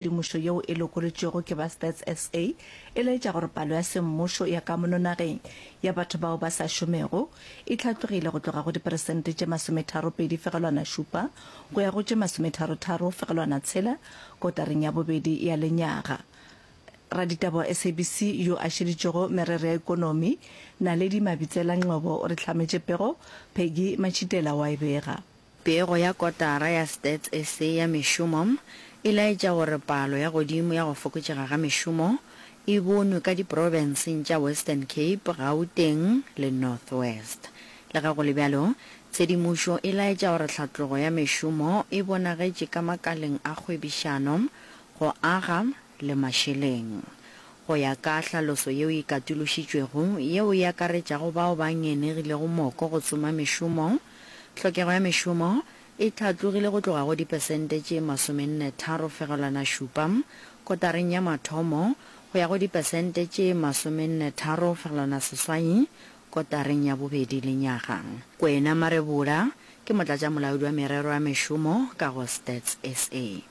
Temošo yeo e lokolotšwego ke ba Stats SA e laetša gore palo ya semmušo ya kamono nageng ya batho bao ba sa šomego e tlhatlogile go tloga go diperesente tše masometharo pedi fegelwana šupa go ya go tše masometharo tharo fegelwana tshela kotareng ya bobedi ya lenyaga. Raditaba wa SABC yo a šeditšego merero ya ekonomi, Naledi Mabitsela Ngcobo o re hlametše pego, Peggy Machitela o a e bega. Pego ya kotara ya Stats SA ya mešomo e laetša gore palo ya godimo ya go fokotšega ga mešomo e bonwe ka diprobenseng tša Western Cape, Gauteng le North West. Lega go le bjalo, tshedimošo e laetša gore tlhatlogo ya mešomo e bonagetše ka makaleng a kgwebišano, go aga le mašeleng. Go ya ka hlaloso yeo e katološitšwego yeo e akaretšago bao ba ngenegilego moko go tsoma mešomo, Tlhokego ya mešomo e hlatlogile go tloga go dipesente tše masomenne tharo fegelwana šupa kotareng ya mathomo go ya go dipesente tše masomenne tharo fegelwana seswai kotareng ya bobedi lenyaga. Kwena Marebola ke motlatšamolaodi wa merero ya mešomo ka go Stats SA.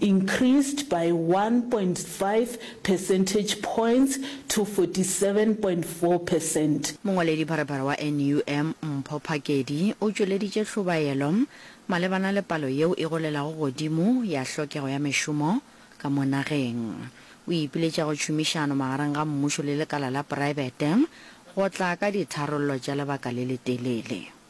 increased by 1.5 percentage points to 47.4 percent. Mongwaledipharephare wa NUM Mpho Phakedi o tšweleditše hlobaelo malebana le palo yeo e golelago godimo ya hlokego ya mešomo ka mo nageng. O ipiletša go tšhomišano magareng ga mmušo le lekala la poraebete go tla ka ditharollo tša lebaka le letelele.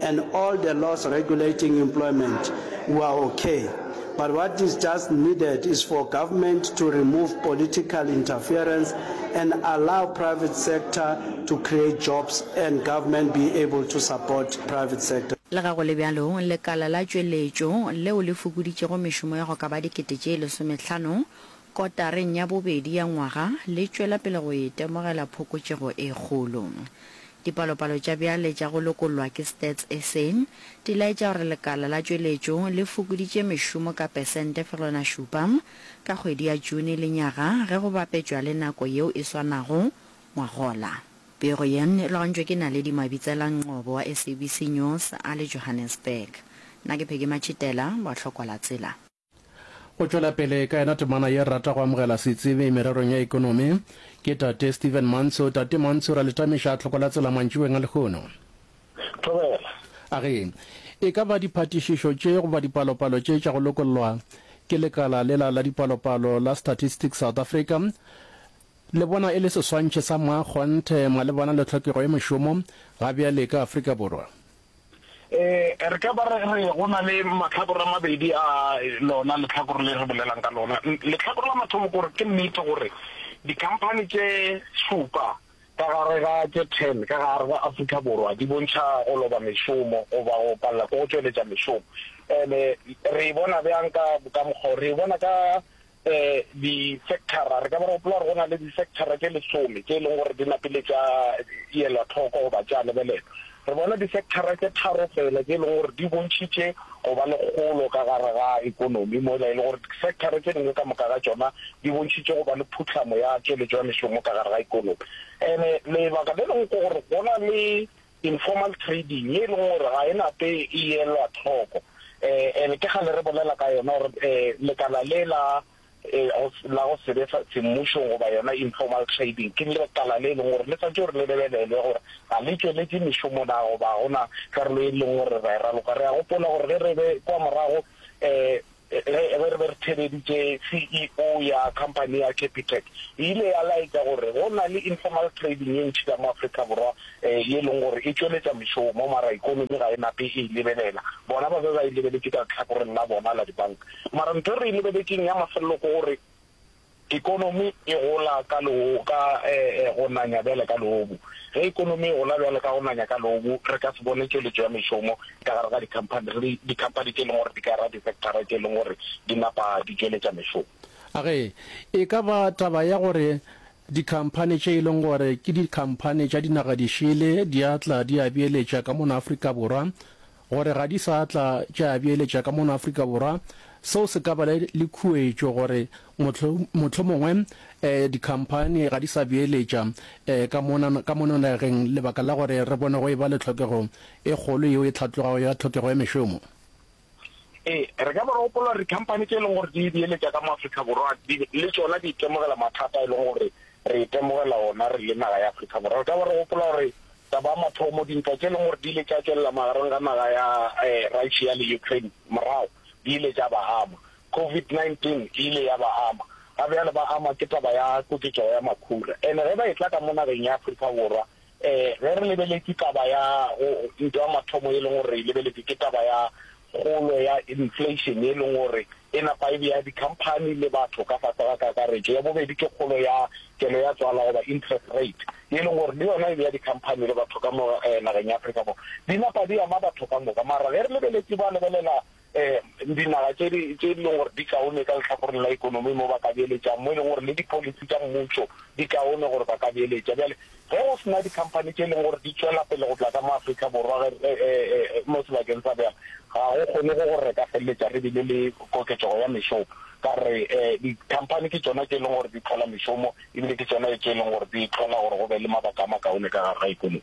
and all the laws regulating employment were ok but what is just needed is for government to remove political interference and allow private sector to create jobs and government be able to support private sector. Lega go le bjalo, lekala la tšweletšo, leo le fokoditšego mešomo ya go ka ba dikete tše lesomehlano, Kotareng ya bobedi ya ngwaga le tšwela pele go itemogela phokotšego e kgolo. Dipalopalo tša bjale tša go lokollwa ke Stats sa di laetša gore lekala la tšweletšo le fokoditše mešomo ka pesente fegelwana šupa ka kgwedi ya June lenyaga ge go bapetšwa le nako yeo e swanago ngwagola. Pego ye e logantšwe ke Naledi Mabitselang Nqobo wa SABC News a le Johannesburg. Nna ke Peggy Matšhitela, Bohlokwa la Tsela. Go tšwela pele ka yena temana ye rata go amogela setsebi mererong ya ekonomi ke Tate Stephen Mantsho. Tate Mantsho, ra le tamiša tlhoko la tsela mantšiboeng a lehono. Thobela. A re, e ka ba diphatišišo tše goba dipalopalo tše tša go lokollwa ke lekala lela la dipalopalo la Statistics South Africa le bona e le seswantšhe sa mmakgonthe malebana le tlhokego ya mešomo ga bjale ka Afrika Borwa? Ee, re ka ba re re go na le mahlakore a mabedi a lona lehlakore le re bolelang ka lona. Lehlakore la mathomo ke gore ke nnete gore dikhamphani tše šupa ka gare ga tše ten ka gare ga Afrika Borwa di bontšha go loba mešomo goba go palela ke go tšweletša mešomo. And-e re e bona bjang ka ka mokgwa o? Re e bona ka Disecthara, re ka ba re gopola gore go na le disecthara tše lesome tše e leng gore di napile tša elwa tlhoko goba tša lebelelwa. Re bona disecthara tše tharo fela tše e leng gore di bontšhitše go ba le kgolo ka gare ga ekonomi, mola e le gore disecthara tše dingwe ka moka ga tšona di bontšhitše go ba le phuhlamo ya tšweletšo ya mešomo ka gare ga ekonomi. And-e lebaka le lengwe ke gore go na le informal trading, ye e lego gore ga e na tee e elwa tlhoko. And ke kgale re bolela ka yona gore lekala le la la go se be semmušong goba yona informal trading ke lekala le e leng gore le swanetše gore le lebelelwe gore ga le tšweletše mešomo na goba ga gona karolo e leng gore ra e raloka. Re a gopola gore ge re be kwa morago um Ge re be re theeleditše CEO ya khamphani ya Capitec, e ile ya laetša gore go na le informal trading ye ntši ka mo Afrika Borwa ye e leng gore e tšweletša mešomo, mara ekonomi ga e nape e e lebelela. Bona ba be ba e lebeletše ka lehlakoreng la bona la dibanka. Mara ntho e re e lebeletšeng ya mafelelo ke gore, Ekonomi e gola ka go nanya bjale ka leobu. Ge ekonomi e gola bjale ka go nanya ka leobu, re ka se bone tšweletšo ya mešomo ka gare ga dikhamphani le dikhamphani tše e leng gore di ka ra disektara tše e leng gore di napa di tšweletša mešomo. A Ge e ka ba taba ya gore dikhamphani tše e leng gore ke dikhamphani tša dinaga dišele di a tla di a beeletša ka mona Afrika Borwa, gore ga di sa tla tša beeletša ka mono Afrika Borwa, seo se ka ba le khuetšo gore mohlomongwe dikhamphani ga di sa beeletša ka mono nageng lebaka la gore re bone go e ba le tlhokego e kgolo yeo e hlatlogago ya tlhokego ya mešomo. Ee, re ka ba re gopola gore dikhamphani tše e leng gore di beeletša ka mo Afrika Borwa le tšona di itemogela mathata a e leng gore Re itemogela wona re le naga ya Afrika Borwa. Re ka ba re gopola gore tsa ba mathomo dintwa tše e leng gore di ile tša tšwelela magareng ga naga ya Russia le Ukraine morago di ile tša ba ama. Covid 19 e ile ya ba ama, ga bjale ba ama ke taba ya koketšego ya makhura. Ene ge ba e tla ka mo nageng ya Afrika Borwa Ee, ge re lebeletše taba ya go ntwa ya mathomo e leng gore re e lebeletše ke taba ya kgolo ya inflation e leng gore e napa e bea dikhamphani le batho ka fase ga kakaretšo. Ya bobedi ke kgolo ya kelo ya tswala goba interest rate e leng gore le yona e bea dikhamphani le batho ka mo nageng ya Afrika Borwa. Di napa di ama batho ka moka mara ge re lebeletše ba lebelela Ee, dinaga tše di tše e leng gore di kaone ka lehlakoreng la ekonomi mo ba ka beeletšang, mo e leng gore le dipolisi tša mmušo di kaone gore ba ka beeletša. Bjale ge go se na dikhamphani tše e leng gore di tšwela pele go tla ka mo Afrika Borwa ge re e, e, e, mo sebakeng sa bjale, ga go kgone go gore re ka feleletša re bile le koketšego ya mešomo, ka re e, dikhamphani ke tšona tše e leng gore di hlola mešomo ebile ke tšona tše e leng gore di hlola gore go be le mabaka a makaone ka gare ga ekonomi.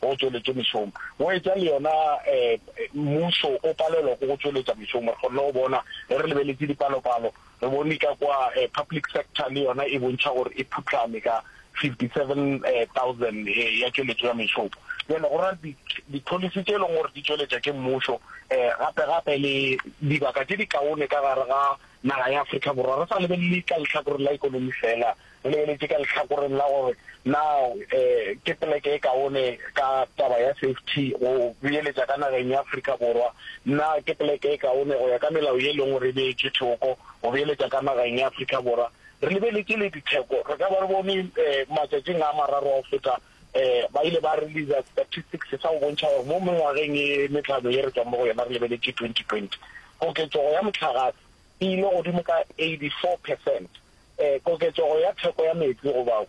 go tšweletšwe mešomo. Go etša le yona mmušo o palelwa ke go tšweletša mešomo. Re kgonne go bona ge re lebeletše dipalopalo, re bone ka kwa public sector le yona e bontšha gore e phutlame ka 57,000 ya tšweletšo ya mešomo. Bjale go ra di-policy tše e leng gore di tšweletša ke mmušo gape gape le dibaka tše di kaone ka gare ga naga ya Afrika Borwa re sa lebelele ka lehlakoreng la ekonomi fela, O le eletše ka lehlakoreng la gore na ke poleke e kaone ka taba ya safety go beeletša ka nageng ya Afrika Borwa, na ke poleke e kaone go ya ka melao ye e leng gore e beetšwe thoko go beeletša ka nageng ya Afrika Borwa. Re lebeletše le ditheko, re ka ba re bone matšatšing a mararo a go feta ba ile ba releaser statistics sa go bontšha gore mo mengwageng e metlhano ye re tšwang mo go yona re lebeletše 2020 koketšego ya mohlagase. e ile godimo ka 84 percent. Koketšego ya theko ya meetse goba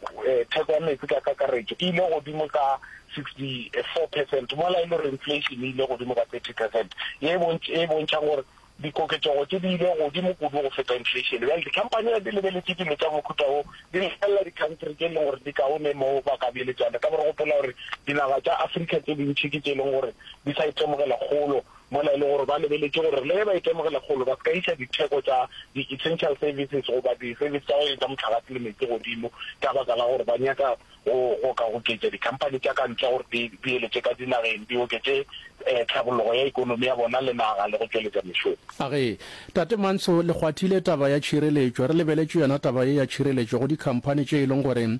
theko ya meetse ka kakaretšo e ile godimo ka 64 percent, mola e le gore inflation e ile godimo ka 30 percent, ye e bontšhang gore dikoketšego tše di ile godimo kudu go feta inflation. Bjale dikhamphani ge di lebeletše dilo tša mohuta wo, di lebelela dikhantri tše e leng gore di kaone mo ba ka beeletšana. Ka gore gopola gore dinaga tša Afrika tše dintši ke tše e leng gore di sa itemogela kgolo. mola e le gore ba lebeletše gore le ge ba itemogela kgolo ba se ka iša ditheko tša di-essential services goba di-service tša go etša mohlagase le meetse godimo ka baka la gore ba nyaka go go ka goketša dikhamphani tša ka ntle gore di di eletše ka dinageng di oketše um tlhabologo ya ekonomi ya bona le naga le go tšweletša mešomo. Age, Tate Manso, le kgwathile taba ya tšhireletšo. Re lebeletše yona taba ye ya tšhireletšo go dikhamphani tše e leng gore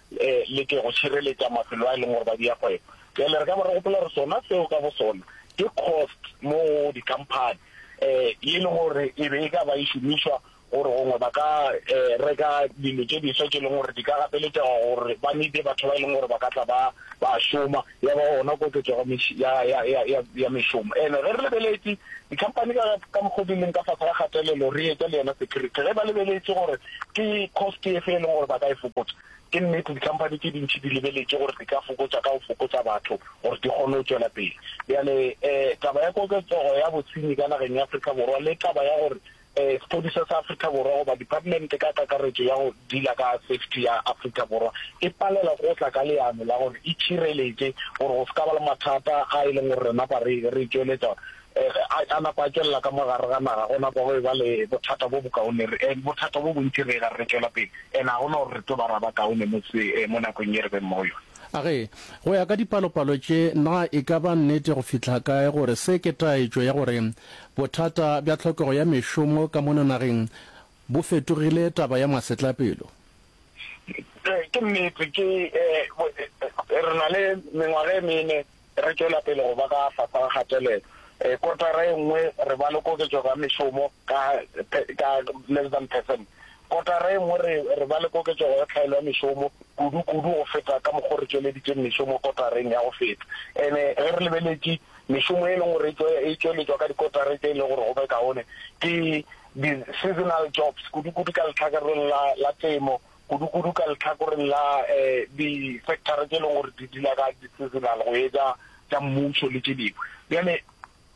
E leke go šireletša mafelo a e leng gore ba dia kgwebo. Bjale re ka ba re gopola gore sona seo ka bosona ke cost mo go dikhamphani e e leng gore e be e ka ba e šomišwa gore gongwe ba ka e reka dilo tše diswa tše e leng gore di ka gapeletšega gore ba need-e batho ba e leng gore ba ka tla ba ba šoma. ya ba gona koketšo ya meši, ya, ya, ya, ya, ya mešomo. Ene ge re lebeletše, dikhamphani ka, ka mokgwa o di leng ka fase ga kgatelelo, re etša le yena security. Ge ba lebeletše gore ke cost e fe e leng gore ba ka e fokotša, ke nnete dikhamphani tše dintši di lebeletše gore di ka fokotša ka go fokotša batho gore di kgone go tšwela pele. Bjale, eh, taba ya koketsego ya bosenyi ka nageng ya Afrika Borwa le taba ya gore Sepodisa sa Afrika Borwa goba Department ka kakaretšo ya go Dila ka Safety ya Afrika Borwa e palela go tla ka leano la gore e tšhireletše gore go se ka ba le mathata a e leng gore re napa re re tšweletša gore a napa a tšwelela ka mo gare ga naga go napa go e ba le bothata bo bokaone re bothata bo bontši re ga re tšwela pele and ga gona gore re tlo ba ra ba kaone mo se mo nakong ye re beng mo yone. A re, Go ya ka dipalopalo tše, na e ka ba nnete go fihla kae gore se ke taetšo ya gore Bothata bja tlhokego ya mešomo ka mona nageng bo fetogile taba ya masetlapelo. Ee, ke nnete. Ke, ee, re na le mengwaga e mene re tšwela pele go ba ka fasa ga kgatelelo. Ee, kotara e nngwe re ba le koketšego ya mešomo ka, ka less than percent. Kotara e nngwe re, re ba le koketšego ya tlhaelo ya mešomo kudu-kudu go feta ka mokgwa o re tšweleditšeng mešomo kotareng ya go feta. And-e ge re lebeletše, Mešomo e e leng gore e tšweletšwa ka dikotara tše e lego gore go be kaone ke di-seasonal jobs, kudu-kudu ka lehlakoreng la, la temo, kudu-kudu ka lehlakoreng la eh, di-sectara tše e leng gore di dila ka di-seasonal go etša tša mmušo le tše dingwe. Bjale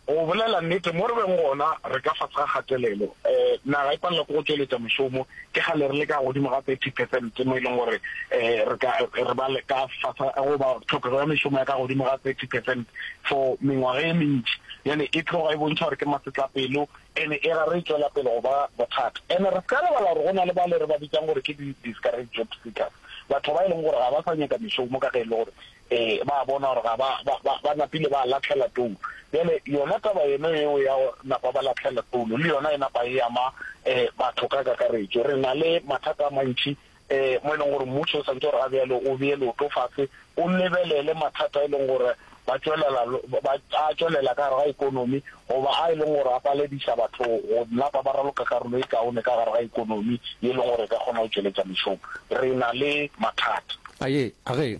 go bolela nnete, mo re beng gona re ka fase ga kgatelelo, eh, naga e palela ke go tšweletša mešomo, Ke kgale re le ka godimo ga 30 percent mo e leng gore re ka re ba le ka fasa go ba tlhokego ya mešomo ya ka godimo ga 30 percent for mengwaga e mentši. Bjale e tloga e bontšha gore ke masetlapelo ene e ra re e tšwela pele go ba bothata. Ene re se ka lebala gore go na le bale re ba bitsang gore ke di-discouraged job seekers, batho ba e leng gore ga ba sa nyaka mešomo ka ge e le gore Ee, ba a bona gore ga ba, ba, ba, ba napile ba lahlela toulo. Bjale, yona taba yeno yeo ya go napa ba lahlela toulo, le yona e napa e ama um batho ka kakaretšo. Re na le mathata a mantši um mo e leng gore mmušo o santse o re ga bjalo o bee leoto fase, o lebelele mathata a e leng gore ba tšwelela, ba, a tšwelela ka gare ga ekonomi, goba a e leng gore a palediša batho go napa ba raloka karolo e kaone ka gare ga ekonomi ye e leng gore e ka kgona go tšweletša mešomo. Re na le mathata. A ye, a re,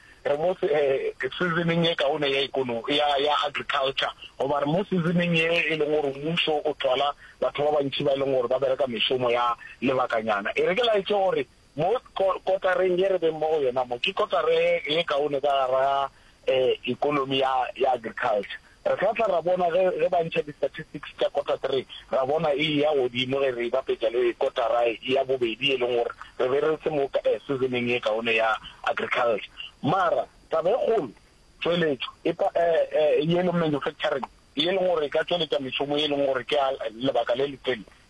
Re mo se, season-ing e kaone ya ekono, ya, ya agriculture. Goba re mo season-ing ye e leng gore mmušo o thwala batho ba bantši ba e leng gore ba bereka mešomo ya lebakanyana. E re ke laetše gore mo ko, kotareng ye re beng mo go yona mo, ke kotara ye, ye kaone ka gare ga, eh, ekonomi ya, ya agriculture. Re tla tla ra bona ge, ge ba ntšha di-statistics tša kota three, ra bona e eya godimo ge re e bapetša le kotara ya bobedi e leng gore re be re se mo season-eng ye kaone ya agriculture. Mara taba e kgolo, tšweletšo e pa, e, e, ye e leng manufacturing, ye e leng gore e ka tšweletša mešomo ye e leng gore ke ya lebaka le letele,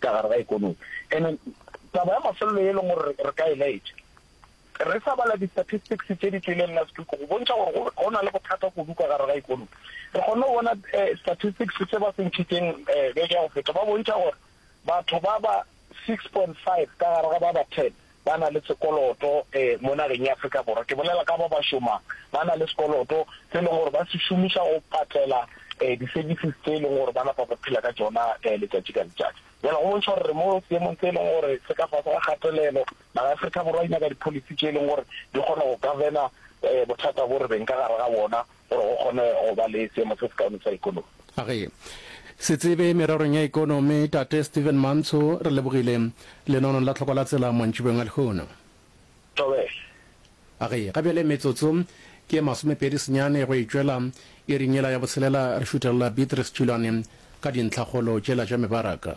ka gare ga ekonomi. And taba ya mafelelo e leng gore re ka e laetša, re sa bala di-statistics tše di tlileng last week go bontšha gore go na le bothata kudu ka gare ga ekonomi. Re kgonne go bona statistics tše ba se ntšhitšeng beke ya go feta, ba bontšha gore batho ba ba six point five ka gare ga ba ba ten ba na le sekoloto mo nageng ya Afrika Borwa, ke bolela ka ba ba šomang, ba na le sekoloto se e leng gore ba se šomiša go patlela di-services tse e leng gore ba napa ba phela ka tšona letšatši ka letšatši. Bjale go bontšha gore re mo seemong se e leng gore se ka fase ga kgatelelo. Naga ya Afrika Borwa e nyaka di-policy tše e leng gore di kgona go govern-a bothata bo re beng ka gare ga bona. gore go kgone go ba le seemo se sekaone sa ekonomi. A re, Setsebe mererong ya ekonomi, Tate Stephen Mantsho, re lebogile lenono la Tlhoko la Tsela mantšibeng a lehono. Thobela. A re, Ga bjale metsotso ke ye masomepedi senyane go e tšwela iring yela ya botshelela re šuthelela Beatrice Tšhilwane ka dintlhakgolo tšela tša mebaraka.